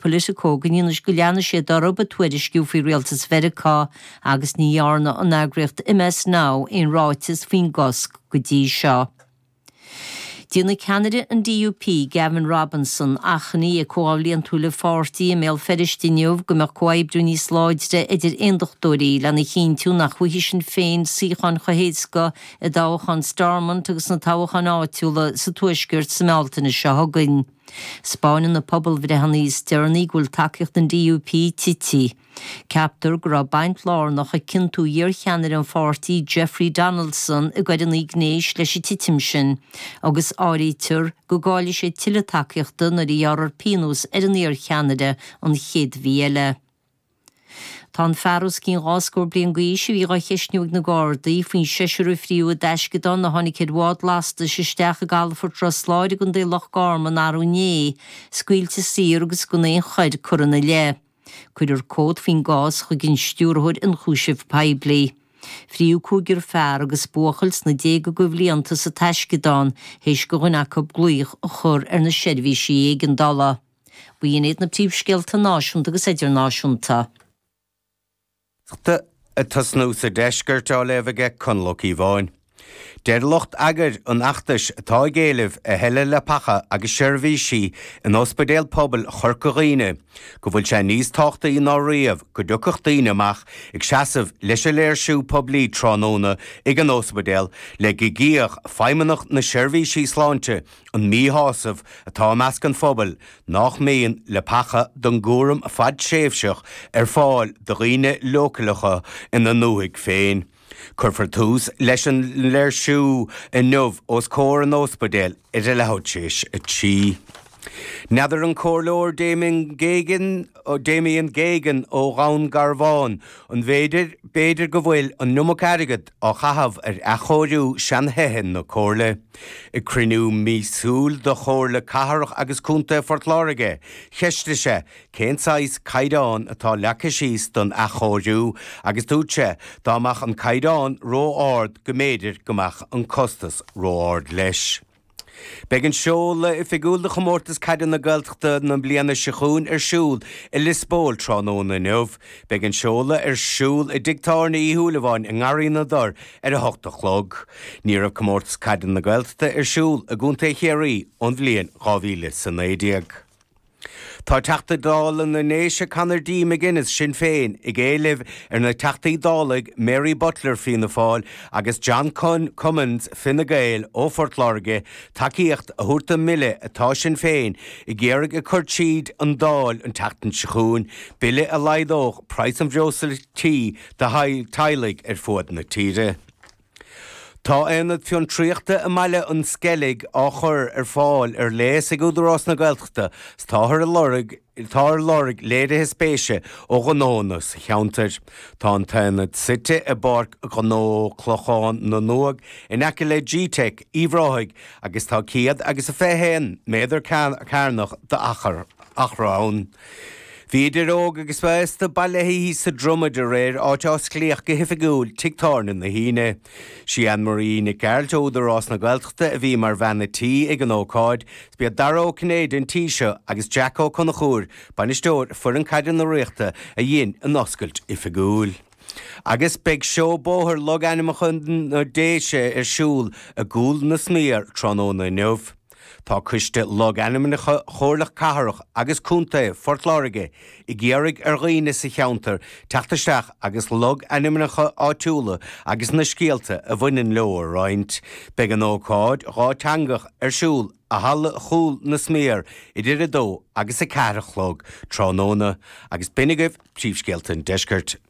Politico go ndéanfaidh go leanfaidh sé de orthu ag tuairisciú faoi Rialtas Mheiriceá agus ní dhearna an eagraíocht MS Now aon ráiteas faoin gcosc go dtí seo. Déanfaidh ceannaire an DUP, Gavin Robinson, achainí ag comhdháil bhliantúil a pháirtí i mBéal Feirste inniu go mbeadh comhoibriú níos láidre idir aondachtóirí lena chinntiú nach bhfaighidh Sinn Féin suíocháin chomh héasca i dtoghchán Stormont agus sna toghcháin áitiúla sa Tuaisceart sa mBealtaine seo chugainn. 'Spáineann na pobalbhreitheanna is deireanaí go bhfuil tacaíocht an DUP tite. Ceaptar go raibh baint lárnach ag ciontú iarcheannaire an pháirtí Jeffrey Donaldson i gcoireanna gnéis leis an titim sin agus áirítear go gcaillfidh sé tuilleadh tacaíochta nuair a ghearrfar pionós ar an iarcheannaire an chéad mhí eile. Tá an fear os cionn dhá scór bliain d'aois a bhí dhá cheistiú ag na Gardaí faoin seisiúr a frítheadh i dtaisceadán a tháinig ar bhád lastais isteach i gcalafort Ros Láir i gContae Loch Garman arú inné scaoilte saor agus gan aon choir curtha ina leith. Cuirfear comhad faoin gcás chuig an Stiúrthóir Ionchúiseamh Poiblí. Frítheadh cúigear fear agus buachaill sna déaga coibhlíonta sa taisceadán théis do dhuine acu glaoch a chur ar na seirbhísí éigeandála. B'in iad na príomhscéalta náisiúnta agus idirnáisiúnta. ag tosnú sa deisceart á léamh ag Conall Ó Cíobháin. Deir lucht eagair an fheachtais atá ag éileamh a thuilleadh leapacha agus seirbhísí in Ospidéal Pobail Chorca Dhuibhne go bhfuil sé níos tábhachtaí ná riamh go dtiocfadh daoine amach ag seasamh leis an léirsiú poiblí tráthnóna ag an ospidéal le go gcífeadh Feidhmeannach na Seirbhísí Sláinte An míshásamh atá i measc an phobail nach mbíonn leapacha don gcúram fadtréimhseach ar fáil do dhaoine leochaileacha ina ndúthaigh féin. Cuirfear tús leis an léirsiú inniu os comhair an óspaidéil ag leath tar éis a 3. N'fheadar an Comhairleoir Damien Geoghegan, Damien Geoghegan ó Dhún Garbhán, an mb'fhéidir, b'fhéidir go bhfuil an iomarca airgead á chaitheamh ar athchóiriú seanthithe na Comhairle. Ag cruinniú míosúil de Chomhairle Cathrach agus Contae Phort Láirge, cheistigh sé cén saghas caighdeáin atá leagtha síos don athchóiriú agus dúirt sé dá mbeadh an caighdeán ró-ard go mb'fhéidir go mbeadh an costas ró-ard leis. Beidh an seoladh oifigiúil do Chomórtas Caide na Gaeltachta na bliana seo chugainn ar siúl i Liospóil tráthnóna inniu. Beidh an seoladh ar siúl i dtigh tábhairne Uí Shúilleabháin i nGarraí na dTor ar a hocht a chlog. Ní raibh Comórtas Caide na Gaeltachta ar siúl i gContae Chiarraí ón bhliain dhá mhíle 's a naoi déag. Tá Teachta Dála na nDéise Conor D. McGuinness, Sinn Féin, ag éileamh ar na Teachtaí Dála Mary Butler, Fianna Fáil, agus John Cummins, Fine Gael, ó Phort Láirge, Tacaíocht a thabhairt don mbille atá Sinn Féin ag iarraidh a chur tríd an Dáil an tseachtain seo chugainn, bille a laghdódh praghas an bhreosla tí do theaghlaigh ar fud na tíre. Tá aonad fiontraíochta i mBaile an Sceilg á chur ar fáil ar léas ag Údarás na Gaeltachta 's táthar ag lorg táthar ag lorg léirithe spéise ó ghnónna sa cheantar. Tá an t-aonad suite i bPáirc Ghnó Chlochán na nUagh in aice le gteic Uíbh Ráthaigh agus tá 100 agus 21 méadar cearnach d'achar ann. Bhí idir óg agus aosta bailithe sa Dromaid aréir áit a osclaíodh go hoifigiúil tigh tábhairne na hUíne. Sí Anne Marie Nic Gearailt ó Údarás na Gaeltachta a bhí mar bhean a' tí ag an ócáid 's b'iad Dara Ó Cinnéide an tí seo agus Jack Ó Conchúir, Bainisteoir Foireann Caide na Ríochta a dhein an oscailt oifigiúil. Agus beidh Seó Bóthair Logainmneacha na Déise ar siúl i gCúil na Sméar tráthnóna inniu. Tá coiste logainmneacha Chomhairle Cathrach agus Contae Phort Láirge ag iarraidh ar dhaoine sa cheantar teacht isteach agus logainmneacha áitiúla agus na scéalta a bhaineann leo a roinnt. Beidh an ócáid dhátheangach ar siúl i Halla Chúil na Sméar idir 2 agus 4 a chlog tráthnóna agus b'in agaibh príomhscéalta an Deiscirt.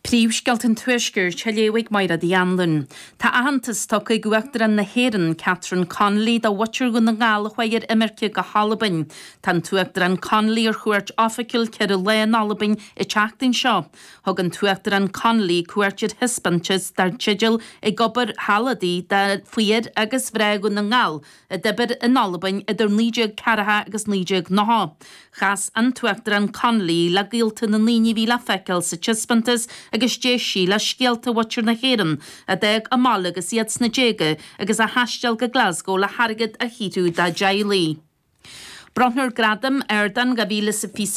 Príomhscéalta an Tuaiscirt á léamh ag Máire Ní Anluain. Tá aitheantas tugtha ag Uachtarán na hÉireann, Catherine Connolly, do mhuintir Dhún na nGall a chuaigh ar imirce go hAlbain. Tá an tUachtarán Connolly ar chuairt oifigiúil ceithre lá in Albain an tseachtain seo. Thug an tUachtarán Connolly cuairt ar thaispeántas dar teideal Ag Obair Thall Adaí faoi fhir agus mhná Dhún na nGall, a d'oibir in Albain idir 1940 agus 1990. Chas an tUachtarán Connolly le gaolta na ndaoine a bhí le feiceáil sa taispeántas agus d'éist sí le scéalta mhuintir na hÉireann a d'fhág an baile agus iad sna déaga agus a thaistil go Glasgow le hairgead a shaothrú dá dteaghlaigh. Bronnfar Gradam Ardán 2020 sa.